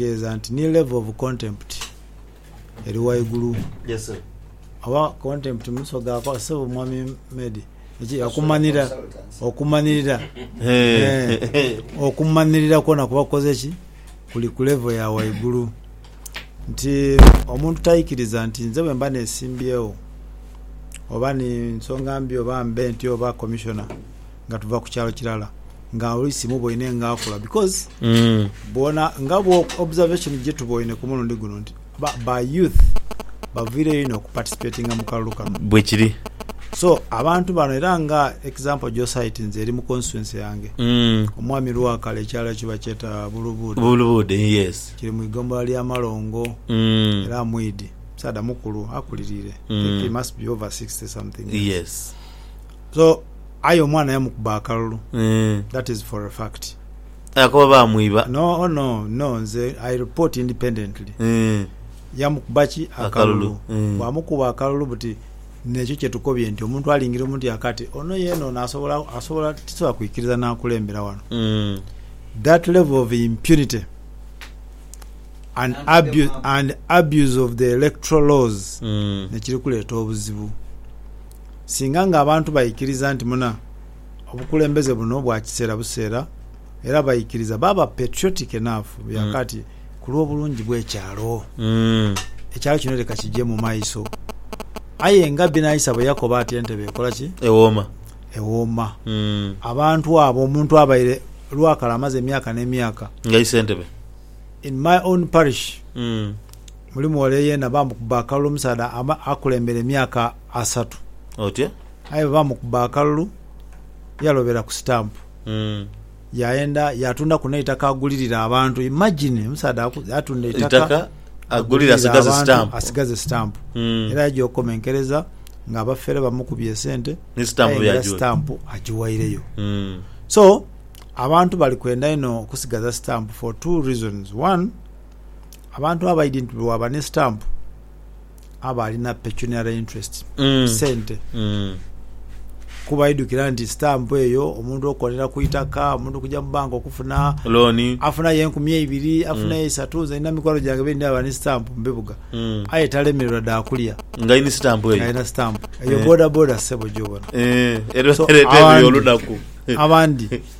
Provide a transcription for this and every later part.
Kitegeeza nti ni level of contempt eri waigulu. Yes sir. Oba contempt mumiso gaako sebo mwami Medi eki okumanira okumanirira eeh okumanirira kwona kuba kukoze ki kuli ku level ya waigulu nti omuntu taikiriza nti nze bwemba nesimbyewo oba ni nsonga mbi oba mbe ntyo oba commissioner nga tuva ku kyalo kilala nga oli simuboine nga akula because bona nga bwo observation gyetuboine ku mulundi guno nti ba, ba youth baviireyo inho okuparticipatinga mu kalulu kano bwe kiri so abantu bano era nga example gyosite nze eri mu constituency yange Mm. omwami Lwakala ekyalo ekyo bakyeta Bulubuuda bulubuude yes kiri mu igombola lya Malongo Mm. era mwidhi musaadha mukulu akulirire I think he must be over 60 something years. yes So aye omwana yamukuba akalulu Eeh. that is for a fact. Aye kuba bamwiba. No oh no no nze I report independently. Eeh. Yamukuba ki akalulu. Akalulu eeh. Bwamukuba akalulu buti nekyo kyetukobye nti omuntu alingira omuntu yaka ati ono yena ono asobola asobola tisobola kwikiriza nakulembera wano. Eeh. That level of impunity and abuse and abuse of the electoral laws Eeh. nekiri kuleeta obuzibu. Singa nga abantu baikiriza nti muna obukulembeze buno bwa kiseera buseera era baikiriza baaba patriotic enough bya kati ku lw'obulungi bw'ekyalo, ekyalo kino leka kigye mu maiso. Aye nga Binaisa bwe yakoba ati entebe ekola ki? Ewooma. Ewooma. Abantu abo omuntu abaire lwakale amaze emyaka n'emyaka. Ng'aise entebe. In my own parish. Muli muwala eyeena baamukuba akalulu omusaadha akulembere emyaka asatu. Otyo. Aye bwe baamukuba akalulu yalobera ku sitampu. Yaenda yaatundaku n'eitaka agulirire abantu. Imagine omusaadha atunda eitaka. Eitaka agulire asigaze sitampu. Asigaze sitampu. Era yaja okukomenkereza ng'abafere bamukubye esente. Ni sitampu byagiwa. Aye era sitampu agiwaireyo. So, abantu bali kwenda inho okusigaza sitampu for two reasons. One, abantu abaidhi nti bwewaba ne stamp aba alina pecuniary interest Mm. sente Mm. kuba idukira nti stamp eyo omuntu okolera ku itaka omuntu kuja mu banka okufuna Looni. afunayo enkumi eibiri afunayo eisatu nze nina mikwano gyange bendi aba ni stamp mubibuga Mm. aye talemererwa dakulya Nga ini sitampu eyo. alina stamp eyo Eh. boda boda sebo gyobona Eh, era So, ereeta ebiyo abandi- olunaku. abandi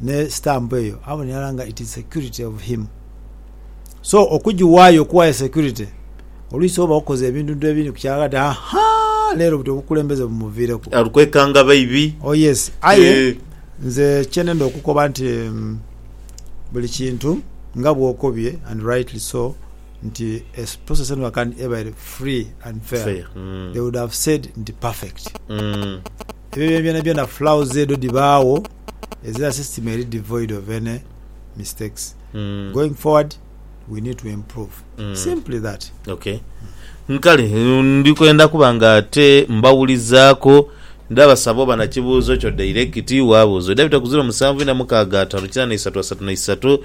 ne stamp eyo abone irala nga it is security of him so okujiwayo okuwayo security oluisi oba okoze ebintuntu ebindi ku kyalo ati ahaa lero buti obukulembeze bumuvireku. Ali kwekanga baibi. Oh yes aye nze kyenenda okukoba nti buli kintu nga bwokobye and rightly so nti a process eno can ebaire free and fair they would have said nti perfect ebyo byonabyona flaws edho dhibagho. ezira system eri devoid of any mistakes going forward we need to improve simply that. Okay. Nkale ndi kwenda kuba nga ate mbawulizaako. Ndabasaba oba na kibuuzo kyo dayirekiti, waabuuza. Oidha bita ku ziro musanvu ina mukaaga ataanu kinaana isatu asatu na isatu.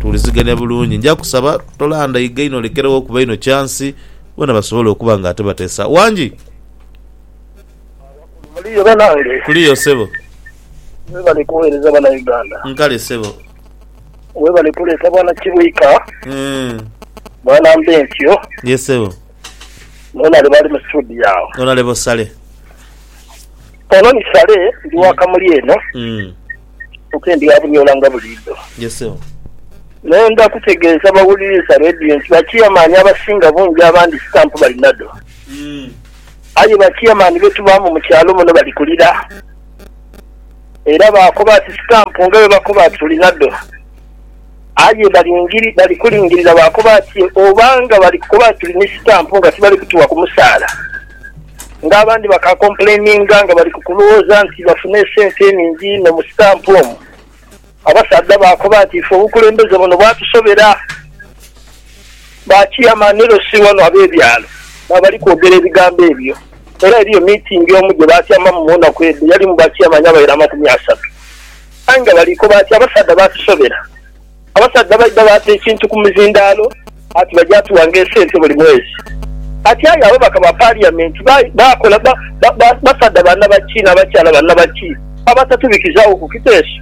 Tuwulizigania bulungi. Nja kusaba tolandaiga inho olekeregho okuba inho kyansi bona basobole okuba nga ate bateesa. Wangi? Abakulu muliyo banange? Tuliyo ssebo. Webale kuwereza bana Uganda. Nkale ssebo. Webale kuleeta bana Kibwika, bana Mbentyo. Ye ssebo. Nonalebo ali mu studio agho. Nonalebo Sale. Ono ni Sale ndi wa Kamuli eno. ku ke ndyabunyola nga buliidho. Yes sebo. Nenda kutegeeza bawuliriza Radio nti ba Chairman abasinga bungi abandi stamp balinadho. Aye ba Chairman be tubaamu mu kyalo muno bali ku lira. Era baakoba ati stamp nga bwe bakoba ati tulinadho. Aye bali kulingirira baakoba ati, Obanga bali kukoba nti tuli ni sitampu nga tibali kutuwa ku musaala, ng'abandi bakaakompuleininga nga bali ku kulowooza nti bafuna esente eningi inho mu sitampu omu. Abasaadha baakoba ati, Ife obukulembeze buno bwatusobera. Bakiyama ni Rossy wano ab'ebyalo mwebali kwogera ebigambo ebyo. Era eriyo miitingi omu gye baatyamamu mu naku edho, yalimu bakiyama ni abaira amakumi asatu. Aye nga bali koba ati, abasaadha baatusobera. Abasaadha baidha baata ekintu ku mizindaalo ati baja tuwa ng'esente buli mwezi. Ati aye ababaka ba Paliyamenti baakola basaadha ba naba ki n'abakyala ba naba ki abatatubikizaawo ku kiteeso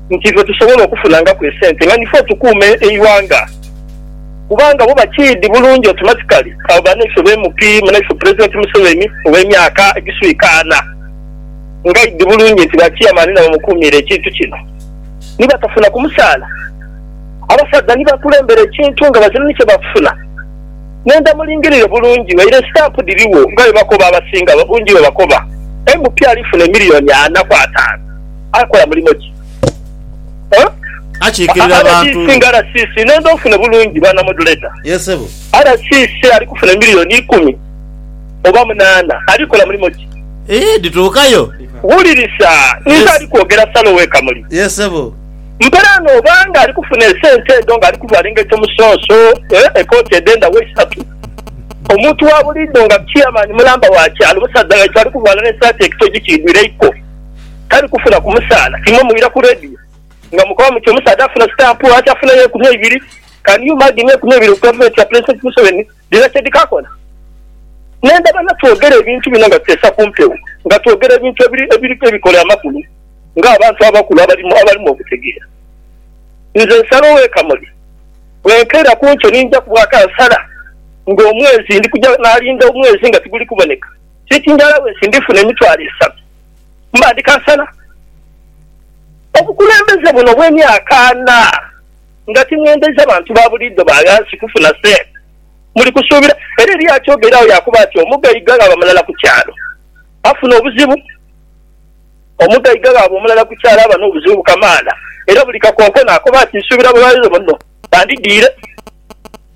nti ife tusobola okufunangaku esente nga nife otukuuma eighanga? Kubanga bo bakiidhi bulungi automatically abo banaife be MP, munaife Pulezidenti Museveni oba emyaka egiswika ana. ngaidi bulungi nti ba chairman nabo mukuumiire ekintu kino ni batafuna ku musaala. Abasaadha ni bakulembera ekintu nga bazira ni kye bafuna. Nenda mulingirire bulungi waire estamp dhirigho nga bwe bakoba abasinga obungi bwe bakoba. MP alifuna emiliyoni ana ku ataanu akola mulimo ki? Rdc nga RCC nenda ofune bulungi bwana modulator. RCC ali kufuna emiliyoni ikumi. oba munaana, ali kukola mulimo ki? Ii, Dhituukayo. Wulirisa, ninze ali kwogera, sala owe Kamuli. Yee, ssebo. Mperaano oba nga ali kufuna esente edho, nga ali kuvaala engaito musonso, ee, ekooti edh'endagho isatu, omuntu wa buliidho nga Chairman mulamba wa kyalo, musaadha waitu ali kuvaala n'esaati ekitoji kiidhwire eiko, tali kufuna ku musaala. Imwe muwulira ku radio nga mukoba muti omusaadha afuna stamp, ati afuna y'enkumi eibiri. Can you imagine, enkumi eibiri ku Gavumenti ya Pulezidenti Museveni? Bino kye dhikakola ne ndaba nga twogera ebintu bino nga tuteesa ku mpewo, nga twogera ebintu ebiriku ebikole amakulu ng'abantu abakulu abalimu okutegeera. Nze nsala ow'ekamuli, bwenkeera ku nkyo ni nja kubwa kansala ng'omwezi ndi kuja naalinda omwezi nga tiguli kuboneka. Sitingi alawensi ndifuna emitwalo esatu, mba ndi kansala. Obukulembeze buno bw'emyaka ana. Nga timwendhaiza bantu ba buliidho ba ghansi kufuna sente, muli kusuubira era eriyo akyogera agho yaakoba ati, Omugaiga ghaba mulala ku kyalo, afuna obuzibu. Omugaiga ghaba omulala ku kyalo aba n'obuzibu bukamaala, era buli kakonkona akoba ati, Nsuubira babaire bano bandidhiire.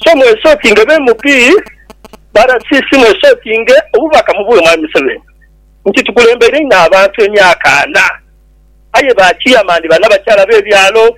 So mwesokinge be MP ba RCC, mwesokinge obubaka mubuwe Mwami Museveni nti tukulembeire inho abantu emyaka ana, aye ba chairman banabakyala b'ebyalo.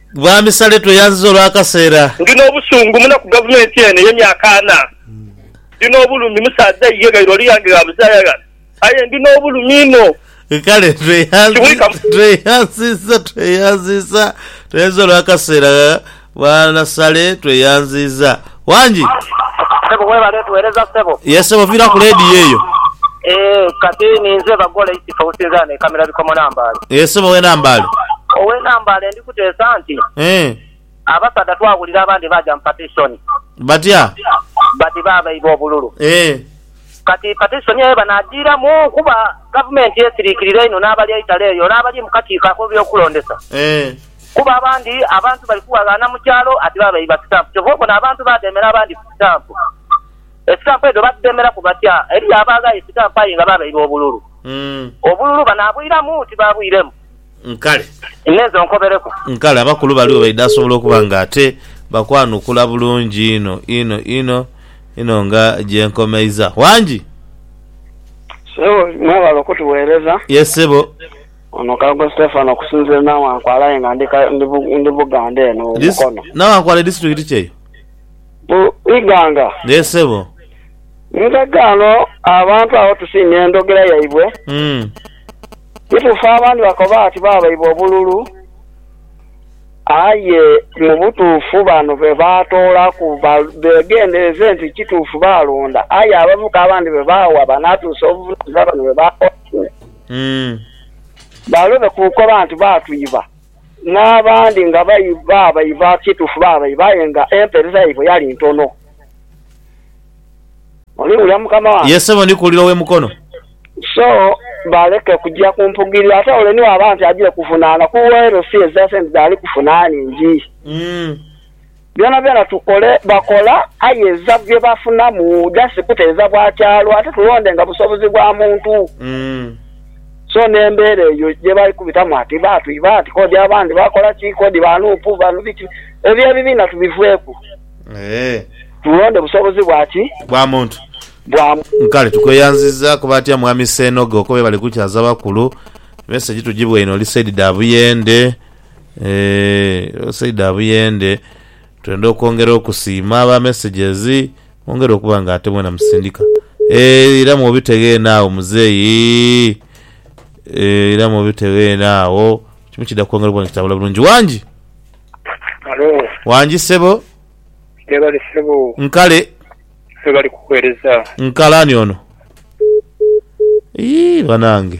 Bwami Saleh tweyanziza olwakaseera. Ndi nobusungu muno ku gavumenti eno eye myaka ana. Ndi nobulumi musaadha iye ghaire oli yange gha buzaaya aye ndi nobulumi inho. Kale tweyanziza tweyanziza tweyanziza olwakaseera Bwana Saleh tweyanziza. Wangi. Sebo webale tuwereza ssebo. Yes ssebo viraku ladiyo eyo. Eeh kati ninze Bagola Isitfa osinzira wano e Kamira Bikomo Nambaale. Eeh ssebo owe Nambaale. Owe Nambaale ndi kuteesa nti. Eeh. Abasaadha twawulira abandi baaja mu patisoni. Batya? Bati baabaibwa obululu. Eeh. Kati patisoni eyo banaagiiramu? Kuba gavumenti esiriikirira inho n'abali eitale eyo n'abali mu kakiiko ak'ebyokulondesa. Eeh. Kuba abandi abantu bali kuwaghaana mu kyalo ati baaba iba sitampu. Kyova obona abantu badheemera abandi ku sitampu. Esitampu edho badhidheemeraku batya? Eriyo abaagha esitampu aye nga baaba iba obululu. Obululu banaabwiramu? Tibaabwiremu. Nkale. Inhenze onkobereku. Nkale, abakulu baligho baidha sobola okuba nga ate bakwanukula bulungi inho inho inho inho nga gye nkomeiza. Wangi! Ssebo, mwebale okutuweereza. Ye ssebo. Ono Kayogo Stephen okusinzira Nawankwala aye nga ndi Buganda eno mu Mukono. Nawankwala edisiturikiti ki eyo? Mu Iganga. Yee sebo. Nkaga ano abantu agho tusiimye endhogera yaibwe. Kituufu abandi bakoba bati baabaibwa obululu aye mu butuufu bano be baatoolaku beegendereze nti kituufu baalonda aye abavuka abandi be baawa banaatuusa obuvunaanyizibwa bano be baatoolaku. Umm. Balobe ku nkoba nti baatwiba, n'abandi nga baabaiba. Kituufu baabaiba aye nga empeereza yaibwe yali ntono. Oliwulira mukama wange? Yee ssebo, ndi kuwulira ow'e Mukono. So, baleke kuja ku mpugiriro. Ate ole ni waba nti aja okuvunaana ku uwe, elo si ezira sente dhaali kufuna ningi. Umm. Byonabyona tukole, bakola, aye eiza bye bafunamu just kuteeza bwa kyalo ate tulondenga busobozi bwa muntu. So n'embeera eyo gye bali kubitamu ati baatu iba ati kodi abandi bakola ki, kodi ba nup bano biki, ebyo ebibiina tubiveeku tulonde busobozi bwa ki? Bwa muntu. Bwa. Kale tukweyanziza kuba atya Mwami Sseenoge okwo bye bali kukyaza bakulu. Message tugibweine oli side dha Buyende. Eeh Saida Abuyende twenda okwongera okusiima aba messages mwongere okuba nga ate mwena musindika eeh era mwobitegha eno agho muzeeyi eeh era mwobitegha eno agho kimu kidha kwongera okuba nga kitambula bulungi Wangi? Halo. Wangi ssebo? Webale ssebo. Nkale. Webale kuwereza. Nkale ani ono? Iyii banange.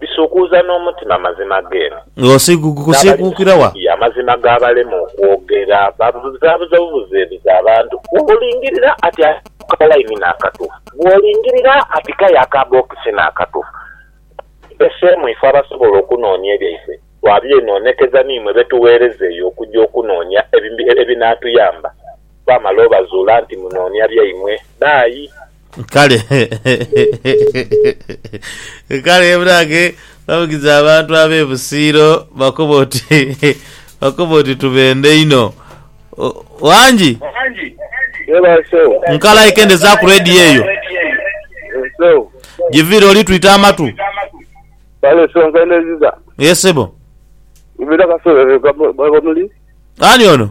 bisuukuuza n'omutima amazima g'eno n'abali mu Studio amazima gaabalema okwogera. Babuzaabuza bubuzeebuze abantu. Bw'olingirira ati aye ako ka line n'akatuufu? Bw'olingirira ati k'aye aka box n'akatuufu? Tuteseemu ife abasobola okunoonia ebyaife, twabyenoonekeza n'imwe be tugheereza eyo okugya okunoonia ebinaatuyamba. Twamala obazuula nti munoonia byaimwe. Bye. Kale, kale munange babugize abantu ab'e Busiiro bakoba oti, bakoba oti tubendhe inho. O, Wangi, Webale Sebo. nkala ekendeza ku radio eyo, Yes Sebo. giviire oli twita amatu. Kale Sebo nkendeziza. Ye sebo. Ibita kasolo eno bamuli? Ani ono?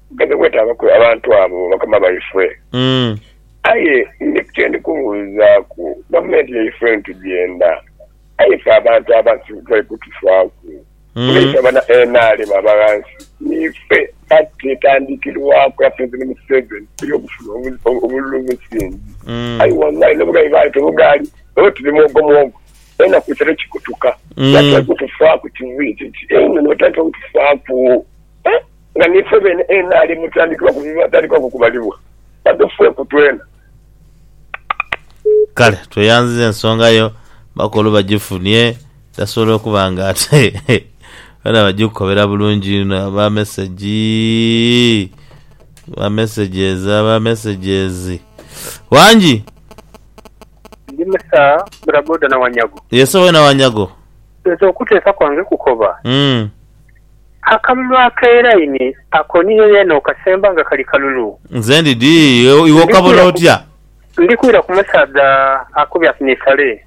Nkaidha kwetaabaku abantu abo bakama baifwe. Aye ndiku kye ndi kubuuzaaku, gavumenti yaifwe ntugenda, aye ife abantu abasiru titali kutufaaku. Nga ife aba NRM aba ghansi, niife pati etandikirwaku era Pulezidenti Museveni tuli okufuna obululu obusingi. Aye wallai n'obugabi baale tebugaali, olwo tuli mwogo mwogo, enaku isatu kikutuka nga titali kutufaaku kiviiri kiti einho nga titali kutufaaku. nga ni ffe beene enaali mu tandikibwa ku bibwatandikwa ku kubalibwa, badhufweku twena. Kale tweyanziza ensonga yo, bakulu bagifunie dasobole okuba nga ate bona bagikukobera bulungi inho. Aba mesegi, aba messages, aba messages. Wangi. Ndi Musa bodaboda na Wanyago. Yes, owe na Wanyago. Nze okuteesa kwange kukoba. Umm. Akalulu ak'eraini ako niyo yeene okasemba nga kali kalulu. Nze ndi di, iwe okabona otya? Ndi kwira ku musaadha akubye ati ni sale.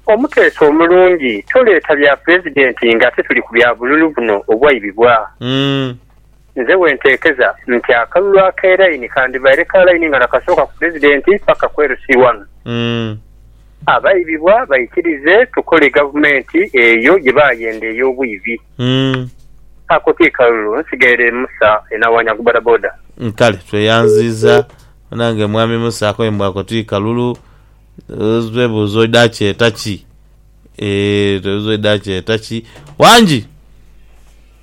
Omuteesi omulungi, toleeta bya Pulezidenti ng'ate tuli ku bya bululu buno obwaibibwa. Nze wenteekeza nti akalulu ak'eraini kandibaire ka laini nga nakasooka ku Pulezidenti paka ku LC wano. Abaibibwa baikirize tukole gavumenti eyo gye baayenda ey'obwibi. Ako ti kalulu, nsigaire Musa enawanya ku bodaboda. Kale tweyanziiza banange Mwami Musa akoye mbu ako ti kalulu. Twebuuza oidha akyeta ki? Eeh twebuuza oidha akyeta ki? Wangi!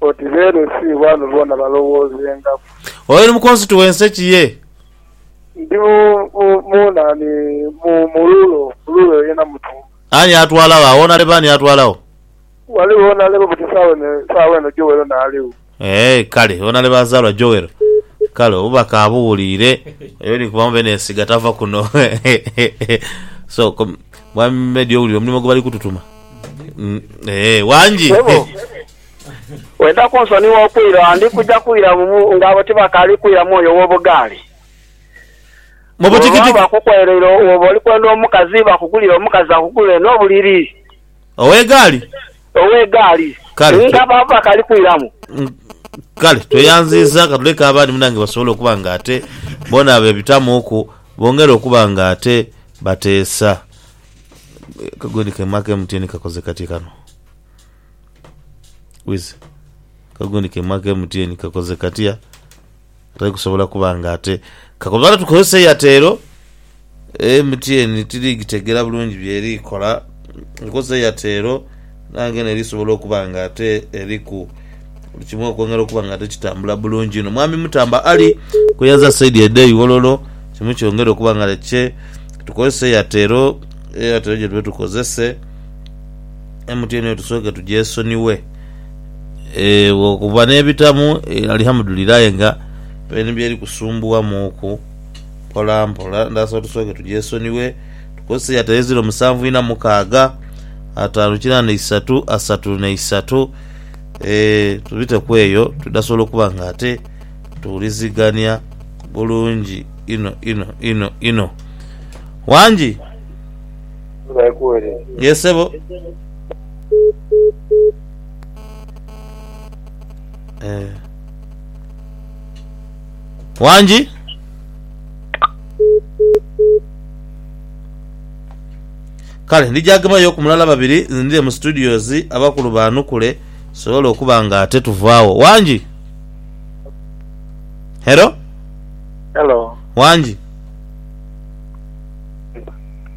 Oti beere si wano boona balowoozengaku. Oyo ni mukonsitu w'ense ki ye? Ndi mu, mu, mu nani, mu, mu rulo, mu rulo eyo yena mutumba. Ani atwalagho agho? Onaleba ani atwalagho? Ghaligho onaleba buti saawa eno, saawa eno Joel ono aligho. Eeh, kale, onaleba azaalwa Joel. Kale, obubaka abuwuliire. Oyo ni kuba mube n'ensiga tava kuno. So, ko, Mwami Meddie owulira omulimu gwe bali kututuma? Eeh, wangi. Ssebo. Oidha kunsonigha kwira, ndi kuja kwira ng'abo tibakaali kwira mwoyo w'obugaali. Bw'oba baakukwereire oba oli kwenda omukazi, bakugulire omukazi akugulire n'obuliri. Ow'egaali. Ow'egaali. Nga baba bakaali kwiramu. Kale tweyanziiza, ka tuleke abandi munaange basobole okuba nga ate boona beebitamuuku, bongere okuba nga ate bateesa. Ka gwe ni kema k'emutyeeni kakoze katye kano? Wize kagundi kemu aka MTN kakoze katya atari kusobola kuba nga ate kakola lwatu tukozesa eyatero MTN tiri gitegera bulungi byeri kola nkozesa eyatero nange neri sobola okuba nga ate eriku buli kimu okwongera okuba nga ate kitambula bulungi ino mwami mutamba ali kweyaza saidi ede iwololo kimu kyongera okuba nga kye tukozesa eyatero eyatero gyetuba tukozese MTN yo tusooke tugyesonighe eh, bwokuba n'ebitamu eh, alihamudulira aye nga peni byeri kusumbuwamuuku mpola mpola ndhasaba tusooke tugyesonighe tukozese ya taire ziro musanvu ina mukaaga ataanu kirandha isatu asatu na isatu eh, tubiteku eyo tudhasobola okuba nga ate tuwulizigania bulungi inho inho inho inho. Wangi! Yee sebo. Eh. Wangi? Kale ndija gemayo ku mulala babiri nzindire mu studios abakulu baanukule tusobole okuba nga ate tuvaawo. Wangi? Hello? Hello. Wangi?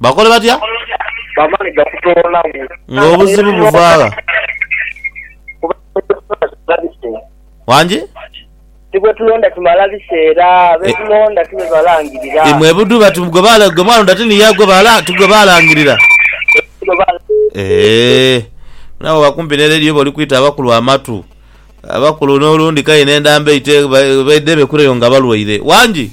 Bakole batya? Bamale gakutoolawo. Ng'obuzibu buva gha? Wangi? Ti gwe tulonda kimala biseera, be tulonda ti be balangirira. Imwe budhu bati gwe bala gwe mwalonda ti niye gwe bala ti gwe balangirira. Eeh naawe oba kumpi ne radio oba oli kwita abakulu amatu. Abakulu n'olundi k'aye n'endamba eite baidhe bekureyo nga balwaire. Wangi?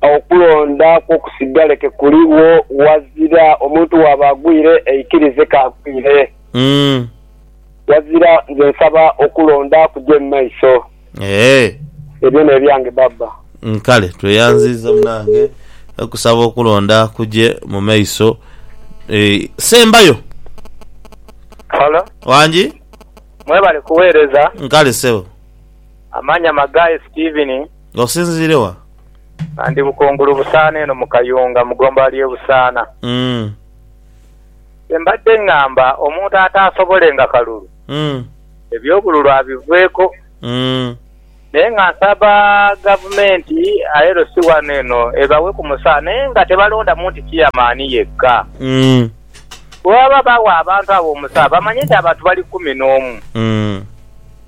Awo okulonda kwo kusigale ke kuligho ghazira omuntu waaba agwire aikirize k'agwire. Ghazira nze nsaba okulonda kuje mu maiso. Ebyo n'ebyange Baba. Kale tweyanziiza munange okusaba okulonda kuje mu maiso. Ssembayo. Hello. Wangi? Mwebale kuweereza. Kale ssebo. Amanhama Guy Steven. Nga osinziire wa? Nga ndi Bukungulu Busaana eno mu Kayunga mu gomba ly'e Busaana. Mm. Kye mbadde ngamba omuntu ataasobolenga kalulu, Mm. eby'obululu abiveeko. Mm. Naye nga nsaba Gavumenti ILC wano eno ebawe ku musaala naye nga tebalondamu nti Chairman yekka. Mm. Bwe baba bagha abantu abo omusaala bamanye nti abantu bali kumi n'omu. Mm.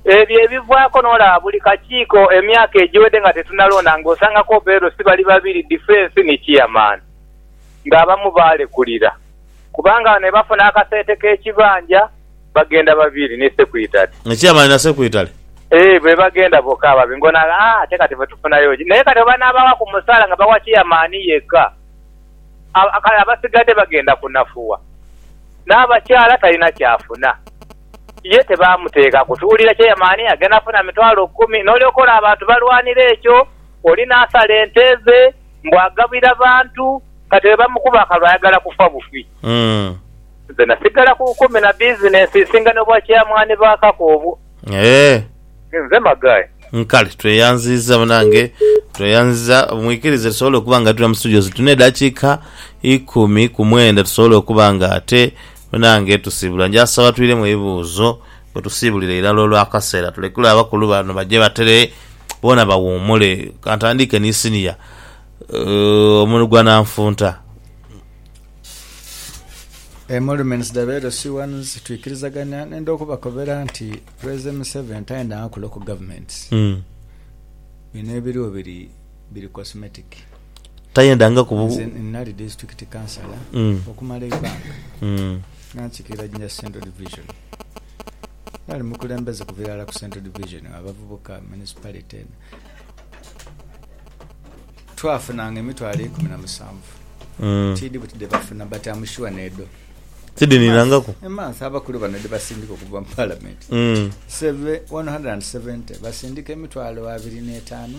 Ebyo ebivaako n'olaba buli kakiiko emyaka egiwedde nga tetunalonda ng'osanga Kobero si bali babiri Defence ni Chairman ng'abamu baalekulira kubanga bano bwe bafuna akasente k'ekibanja bagenda babiri ni Sekwitale. Nga Chairman na Sekwitale? Eeh be bagenda bokka ababiri ng'ono agamba haa ate kati ffe tufunayo ki? Naye kati bwe banaabawa ku musaala nga bawa Chairman yekka kale abasigadde bagenda kunafuwa n'abakyala talina ky'afuna. Ye tebaamuteeka kutuulira kyeyamaani nga naafuna mitwalo kumi, n'olyoka olaba abantu balwanira ekyo, oli n'asala ente ze mbu agabira bantu. Kati bwe bamukuba akalulu ayagala kufa bufi. Nze nasigala ku bukumi na bizinensi esinga n'obwakyeyamaani ba kaka obwo. Nze Maghai. Kale tweyanziza banange, tweyanziza. Mwikirize tusobole okuba nga tuli mu studios tune edakiika ikumi ku mwenda tusobole okuba nga ate Me nange tusiibula nja saba twiremu ebibuuzo bwe tusiibulira irala olw'akaseera tulekule abakulu bano baje batere boona bawuumule. Ka ntandiike ni siniya Omunigwananfunta. Emoluments dhabe edho si ones, twikirizagania nenda okubakobera nti President Museveni tayendanga kulocal governments. Bino ebiriwo biri. biri cosmetic. Tayendangaku bu. Nze nali disiturikiti kansala okumala eighanga nga nsikirira Jinja Central Division. Nali mukulembeze kuva irala ku Central Division wa bavubuka mu municipality eno. Twafunanga emitwalo eikumi na musanvu. Tiidhi buti dhe bafuna but am sure n'edho. Tidhininangaku. A month abakulu bano dhe basindika okuva mu palamenti. One hundred and seventy basindika emitwalo abiri n'etaanu.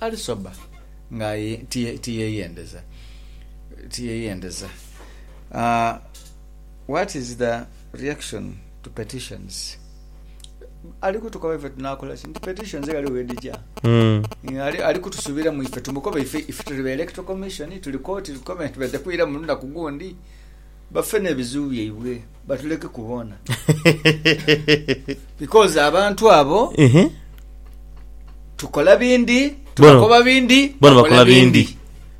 Ali sober nga aye tiyeyendeza tiyeyendeza aah what is the reaction to petitions ali kutukoba ife tunakola ki nti petitions ghaligho ghedija ali kutusubiramu ife tumukobe ife tuli ba electoral commission tuli koti tukobe nti baja kwiramu lunaku gundi bafe nebizibu byaibwe. batuleke ku boona because abantu abo Ehe. tukola bindi Bono. tubakoba bindi bona bakola bindi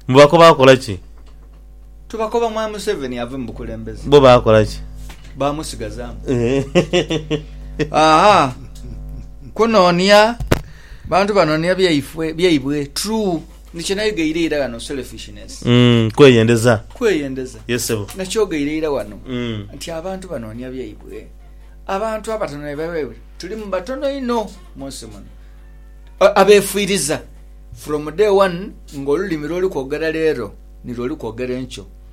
mubako bakola ki tubakoba mwami museveni ave mu bukulembeze bo bakola ki bamusigazamu aha kunonia bantu banonia byaifwe byaibwe true Ni kye nayogeire ira ghano, selfishness. Mm, kweyendeza. Kweyendeza. Yes sebo. Na kyogeire ira ghano mm. nti abantu banoonya byaibwe. Abantu abatono ne byaibwe. Tulimu batono inho mu nsi muno abeefiiriza from day one ng'olulimi lw'oli kwogera leero nilwo oli kwogera enkyo.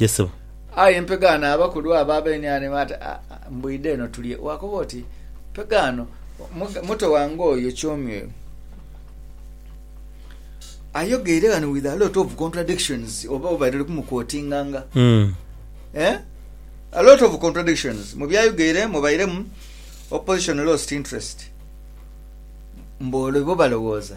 Yes sebo. Aye mpegaano abakulu abo abenhane baati, Mbwidha eno tulye. Waakoba oti, Mpegaano, muto wange oyo Kyomyoyo ayogeire ghano with a lot of contradictions, oba obaire oli kumuquotinganga. Eh? A lot of contradictions. Mu byayogeire mubairemu opposition lost interest. Mbu olwo ibo balowooza.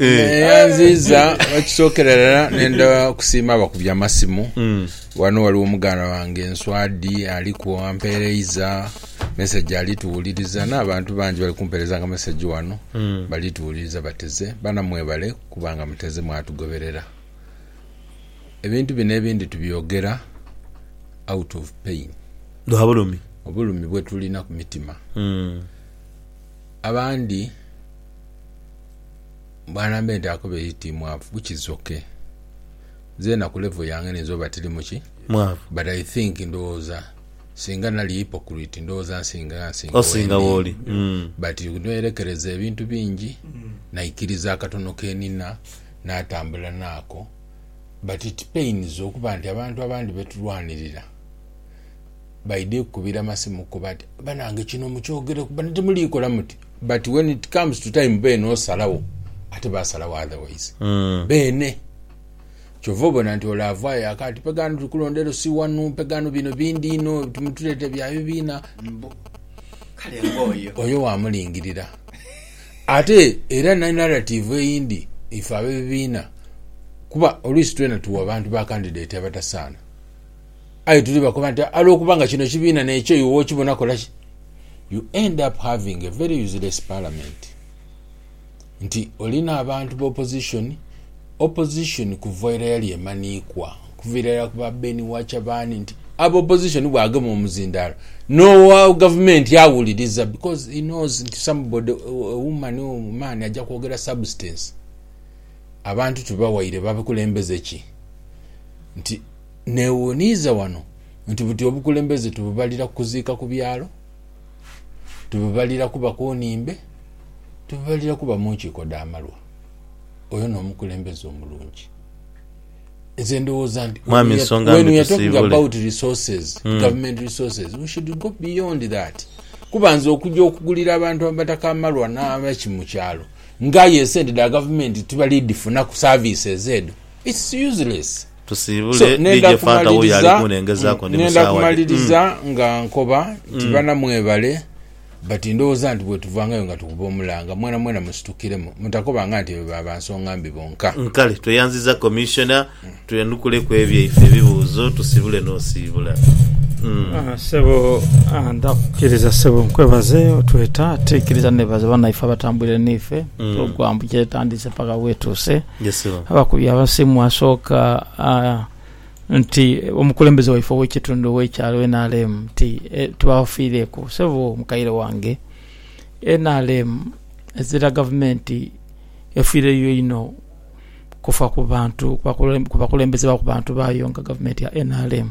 Neyanziiza ekisookera irala nenda kusiima abakubye amasimu. Wano waliwo muganda wange Nswadi aliku ampereiza message ali tuwuliriza n'abantu bangi bali kumpeerezanga message wano bali tuwuliriza bateze. Bana mwebale kuba nga muteze mwatugoberera. Ebintu bino ebindi tubyogera out of pain. Lwa bulumi. Obulumi bwetulina ku mitima. abandi banambe nti ako baire ti mwavu which is ok nzena ku level yange niyinza oba tiri muki Mwavu. but I think ndowooza singa nali hypocrite ndowooza nsinga nsinga Osinga wendi wooli. Mm. but neyerekereza ebintu bingi naikiriza akatono kenina natambula naako but it pains okuba nti abantu abandi betulwanirira Baidha kukubira masimu ko bati banange kino mukyogereku bano timulikola muti but when it comes to time beene osalawo ate basalawo otherwise beene kyova obona nti ole avaayo aka ati pega ghano tuli kulonda elo si wanu pega ghano bino bindi inho timutuleeta bya bibiina mbu Kale ng'oyo. oyo wamulingirira ate era ni narrative eyindi ife abebibiina kuba oluisi twena tuwa bantu ba candidate abatasaana. aye tuli bakoba nti alwokuba nga kino kibiina nekyo iwe okibona kolaki you end up having a very useless parliament nti olina abantu ba opposition opposition kuva era yali emanikwa kuvira era kuba Ben Wachabani nti aba opposition bwagema omuzindalo nowa gavumenti awuliriza because he knows nti somebody a woman or man aja kwogera substance abantu tubawaire bakulembeze ki nti Neewuuniiza wano nti buti obukulembeze tububalira ku kuziika ku byalo? Tububalira kuba ku nhimbe? Tububalira kuba mu nkiiko dha malwa? Oyo n'omukulembeze omulungi? Nze ndowooza nti when we are talking about resources, government resources, we should go beyond that. Kuba nze okuja okugulira abantu Abataka amalwa n'abaki mu kyalo nga aye esente dha gavumenti tibali dhifunaku services edho, it's useless. So nenda kumaliriza nenda kumaliriza nga nkoba nti bana mwebale but ndowooza nti bwetuvangayo nga tukuba omulanga mwena mwena musitukiremu mutakobanga nti ebe ba bansonga mbi bonka. Kale tweyanziza Commissioner twenukuleku ebyaife ebibuuzo tusibule nosiibula. Ssebo nda kukiriza ssebo nkwebaze otweta ate nkiriza nebaza banaife abatambwire naife program kyetandiise paka wetuuse. Abakubi abasimu asooka nti omukulembeze waife ow'ekitundu ow'ekyalo nrm nti tubafiireku sebo mukaire wange. Nrm ezira gavumenti efiireyo inho kufa ku bantu, ku bakulembeze ba ku bantu baayo nga gavumenti ya nrm.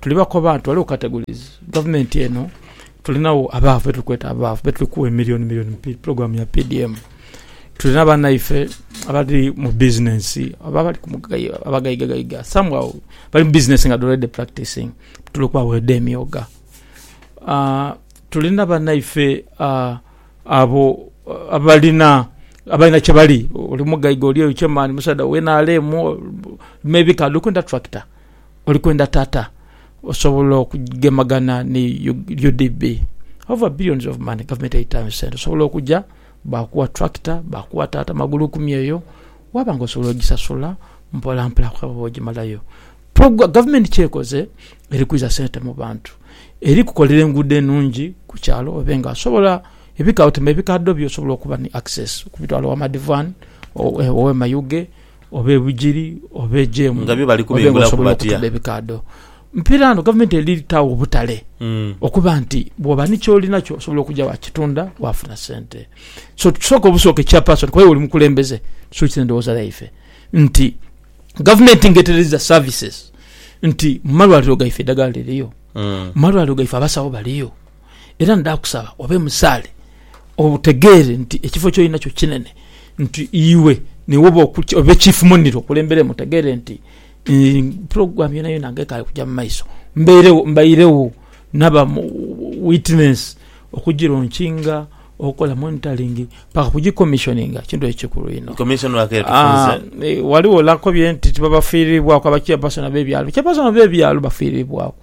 Tuli bakoba nti ghaligho categories. Gavumenti eno tulinagho abaavu betuli kweta abaavu betuli kugha emillioni millioni mu program ya PDM. Tulina banaife abali mu business oba abali abagaiga gaiga somehow bali mu business nga already practicing tuli kubagho edho emyoga. Tulina banaife abo abalina abalina kyebali oli mugaiga oli chairman musaadha wa nrm, maybe k'ali kwendha tractor. Oli kwenda tata osobola okugemagana ni UDB over billions of money gavumenti eyitayo sente osobola okuja bakuwa tractor bakuwa tata magulu kumi eyo waba nga osobola ojisasula mpola mpola paka bwojimalayo togwa gavumenti kyekoze eri kwiza sente mubantu eri kukolera engudo enungi kukyalo obe nga osobola ebika otima ebikadho byo osobola okuba ni access okubitwala ewa madivani owe mayuge Oba ebujiri oba ejemu nga byo bali kubimbulaku batya? Mpira ano gavumenti eritaawo obutale mm. okuba nti bwoba ni kyolinakyo osobola okujja wakitunda wafuna sente so tusooka obusooka ekyapasoni kuba oli mukulembeze tusuukiza endowooza yaife nti gavumenti ngetereza services nti mumalwaliro gaife eddagala liriyo mm. mumalwaliro gaife abasawo baliyo era ndaakusaba obe musaale, otegeere nti ekifo ky'oli nakyo kinene, nti iwe niiwe oba obe chief monire okulemberemu, otegeere nti program yonayona nga ekaali kuja mu maiso mbeiregho, mbairegho naba witness okugilonkinga, okola monitoring paka kugikommishoninga, kintu ekyo kikulu inho. Ghaligho nakobye nti tibabafiiriibwaku, abachairpersona b'ebyalo, abachairpersona b'ebyalo bafiiriibwaku.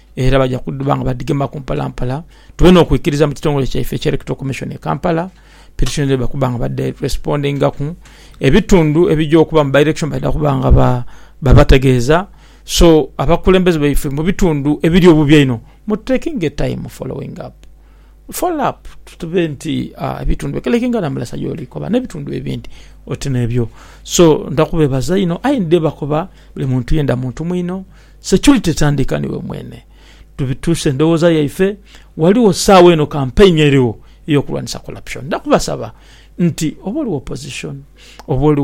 era baja kudhuba nga badhigemaku mpalampala tube n'okwikiriza mu kitongole kyaife ekya Electoral Commission e Kampala pitisoni dhaibwe okuba nga badheresipondingaku, ebitundu ebija okuba mu bairekishoni baidha kuba nga babategeeza, so abakulembeze baife mu bitundu ebiri obubi einho mututekinge tayimu folowingi apu, folo apu tube nti ebitundu bikole kinga na Mulasa gyoli koba n'ebitundu ebindi oti n'ebyo. So nda kubeebaza inho aye ndidhebakoba buli muntu yenda muntu mwinho. Security tandika niwe mwene. Tubituuse endowooza yaife, ghaligho saawa eno campaign erigho eyokulwanisa corruption. Nja kubasaba nti oba oli wa opposition, oba oli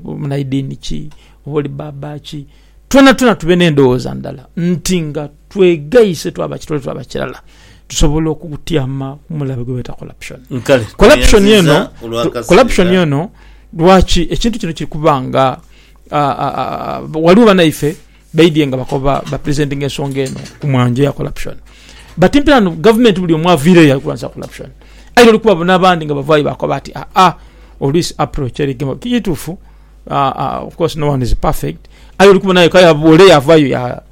munaidiini ki, oba oli baaba ki, twonatwona tube n'endowooza ndala nti nga twegaise twaba kitole twaba kirala tusobola okutyama ku mulabe gwe beta corruption. Corruption eno, corruption eno lwaki ekintu kino kiri kuba nga. Ghaligho banaife baidhye nga bakoba ba presentinga ensonga eno ku mwanjo ya corruption but mpela no gavumenti buli omu avireyo ali kulwanisa corruption aye oli kubabona abandi nga bavayo bakoba ati aa oluisi approach eri gema. Kitufu of course no one is perfect aye oli kubona yeka ole yavayo ya.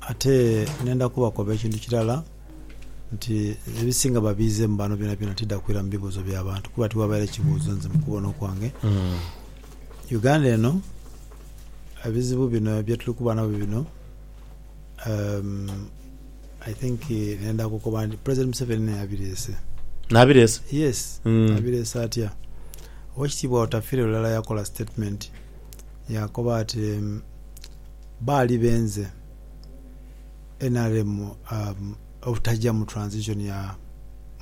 Ate nenda kubakoba ekintu kirala nti ebisinga babiizemu bano byonabyona tidha kwira mu bibuuzo bya bantu kuba tiwabaire kibuuzo nze mu kubona okwange. Uganda eno ebizibu bino bye tuli kuba nabyo bino I think nenda kukoba nti President Museveni naye abireese. Nabireese? Yes, abireese atya? Owekitiibwa Otafiire lulala yakola statement Yaakoba ati, Baali benze nrm obutaja mu transition ya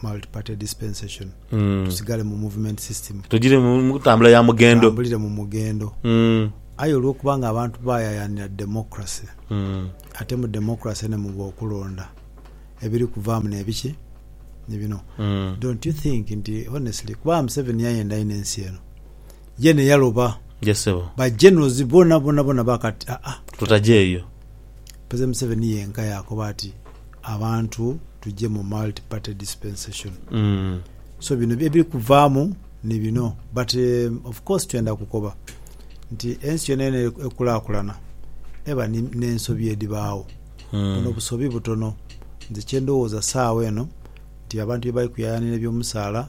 multiparty dispensation, tusigale mu movement system, Tugire mu mu ntambula ya mugendo. tutambulire mu mugendo. Aye olwokuba nga abantu bayayaanira democracy, ate mu democracy nemuba okulonda, ebiri kuvaamu nebiki? Ni bino. Don't you think nti honestly, kuba Museveni yayenda inho ensi eno, Ye ne yaloba. Ye ssebo. Ba Generals bona bona bona baaka ati aa tutaje eyo. President Museveni yenka yaakoba ati abantu tuje mu multi party dispensation. So bino ebiri kuvaamu ni bino but of course twenda kukoba nti ensi yonayona ekulakulana eba ni ne nsobi edhibaagho. Buno busobi butono nze kye ndhowooza saawa eno nti abantu bye bali kuyayanira ebyomusaala.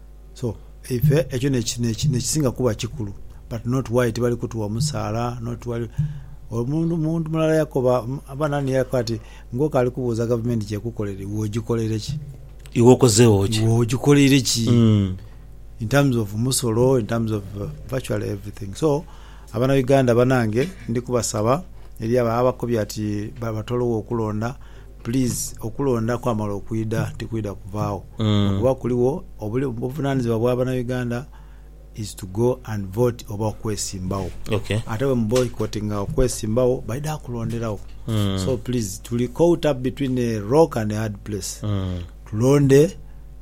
So ife ekyo nekisinga kuba kikulu but not why tibali kutuwa musaala not why Omuntu mulala yakoba oba nani yakoba ati ngoku ali kubuuza gavumenti kyekukolera iwe ojikoleire ki? Iwe okozeegho ki? Iwe ojikoleire ki in terms of musolo in terms of virtually everything so abanauganda banange ndi kubasaba eri abo ababakobye ati batolowo okulonda Please okulonda kwamala okwidha tikwidha kuvaagho lwakuba kuligho obuvunanizibwa bwa bana Uganda is to go and vote oba okwesimbagho ate bwe mu boycottinga okwesimbagho baidha kulonderagho so please tuli caught up between a rock and a hard place tulonde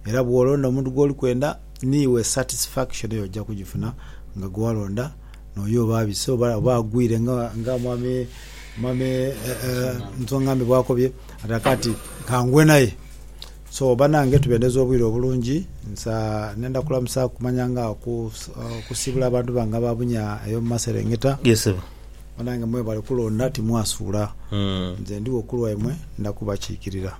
era bwolonda omuntu gwoli kwenda niiwe satisfaction yo ojja kujifuna nga gwewalonda N'oyo oba abise oba agwire nga Mwami Nsongambi bw'akobye ataka ati, Ka ngwe naye. So, banange tubendeze obwire obulungi. Nsa nenda kulamusa kumanya nga okusiibula abantu bange aba bunya ey'omu maserengeta. Banange mwebale kulonda, timwasuula. Nze ndigho ku lwaimwe, nda kubakiikirira.